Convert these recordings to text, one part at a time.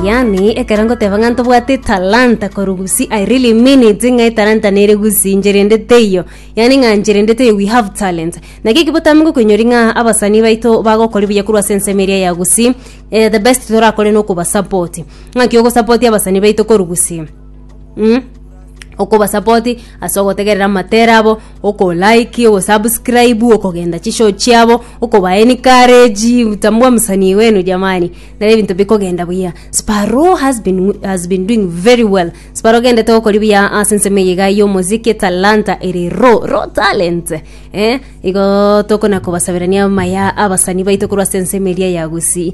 yani ekero ngoteba ng'a ntobwate talanta korugusi i really mean it ng'a etalanta nere gusi ncherendete iyo yani ng'a ncherendete iyo we have talent naki eki botambe gokoinyori ng'a abasani baito bagokori buya korwa ase ensemo eria ya gusi eh, the best torakore nokobasapoti ng'aki ogosapoti abasani baito korugusi mm okobasapoti ase ogotegerera amatera abo, okolike, ogosubscribe, okogenda chishow chiabo, okoba encourage, kutambua msanii wenu jamani, nere ebinto bikogenda buya. Sparrow has been, wi- has been doing very well, Sparrow ogendete gokori buya ase ensemo eye iga y'omosike, talanta ere raw, raw talent eh, igo tokona kobasaberania maya abasanii baito korwa ase ensemo eria ya Gusii.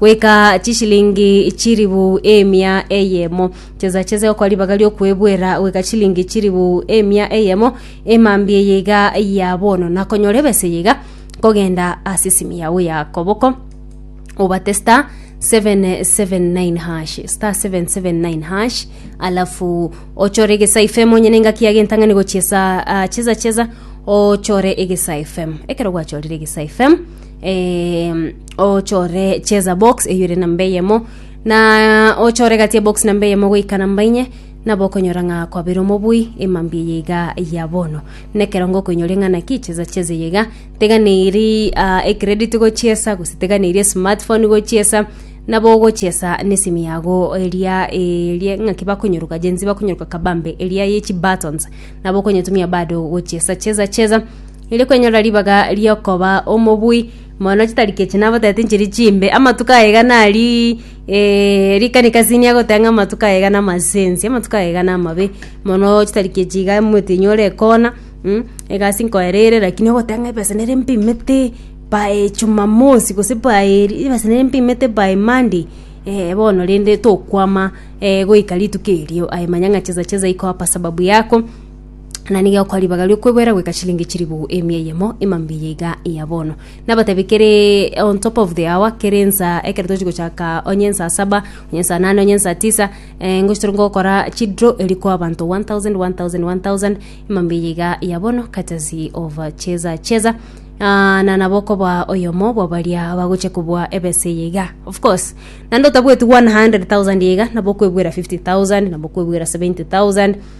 goika chishilingi chilifu emia eyemo, chesachese gokora ribaga ri'okwebwera goika chilingi chilifu emia eyemo, emambia eye iga ya bono, na konyora ebesa eye iga nkogenda ase esimi yao ya koboko obate star 779 hash star 779 hash alafu ochore egesa ifemo onye nengaki ya gentang'ani gochia sa ah, cheza cheza ochore egesa fm ekero gwachorire egesa fm eh, ochore cheza box eyo ere namba eyemo na ochore gati ya box namba eyemo goika namba inye nabo okonyora ng'a kwabere omobui emambi eye iga ya bono nekerongo okoinyoria ng'a naki cheza cheza eye iga tiga neri ah, ecredit gochiesa gose tiga neri esmartphone gochiesa nabo ogochiesa nesimi yago eria eria ng'aki bakonyoruka Gen Z bakonyoruka kabambe eria ye chibuttons nabo okonyetumia bado gochiesa cheza cheza ere kwenyorera ribaga riokoba omobui Mono chitariki echi nabotaete nchiri chimbe, amatuko aye iga nari eh, rikani kasini agoteba ng'a amatuko aye iga namasensi, amatuko aye iga namabe mono chitariki echi iga omotinyi ore ekona mm, egasi nkoera ere lakini ogoteba ng'a ebesa nere mpimete by jumamosi gose by ri ebesa nere mpimete by monday eh bono rende tokwama eh goika rituko erio aye manya ng'a chesa chesa iko hapa sababu yako. na nigo egokoa ribaga riokweboera goika chilingi chiribu emia eyemo emambiya iga ya bono nabatebi kere on top of the hour kere ensa ekero tochi gochaka onye ensa saba onye ensa nane onye ensa tisa eh, ngochi tore gokora chidraw eri koa abanto 1000 1000 1000 emambiya iga ya bono courtesy of cheza cheza Ah, na nabo okoba oyomo bwa baria bagochia kobua ebesa eye iga of course naende otabweti 100000 iga nabo okwebwera 50000 nabo okwebwera 70000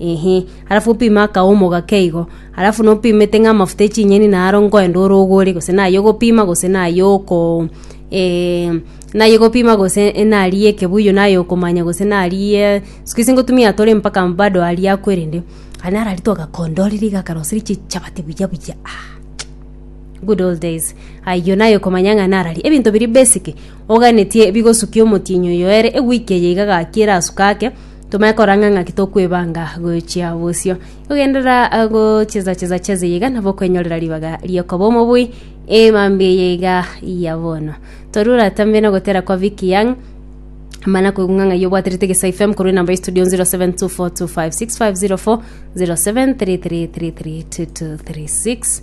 Inki? Arafu opime akaomo gake igo, arafu nopimete ng'a amafuta e chinyeni naro nkoenda orogore, gose nayio ogopima gose nayio oko eh, nayio ogopima gose enariyi ekebuyu nayio okomanya gose nariyi e, siku hizi ngotumia tore mpaka bado aria akwo erende, aye naro aria twagakondorire iga akaroseri chichabati buya buya ah good old days ayio naye okomanya ng'a naro aria ebinto biria basic oganetie bigosukia omotienyi oyo ere ewiki eye iga gaki erasuka ake. Tomanye koranga ng'aki tokwebanga gochia bosio. Ogenderera gochezacheza cheze iga nabo okwenyorera ribaga riokoba omobui emambia eye iga ya bono. Toru oratambe na gotera kwa Vicky Young mana kwegunga ng'ai obwaterete gesa FM korwa enamba ya studio 0724256504 0733332236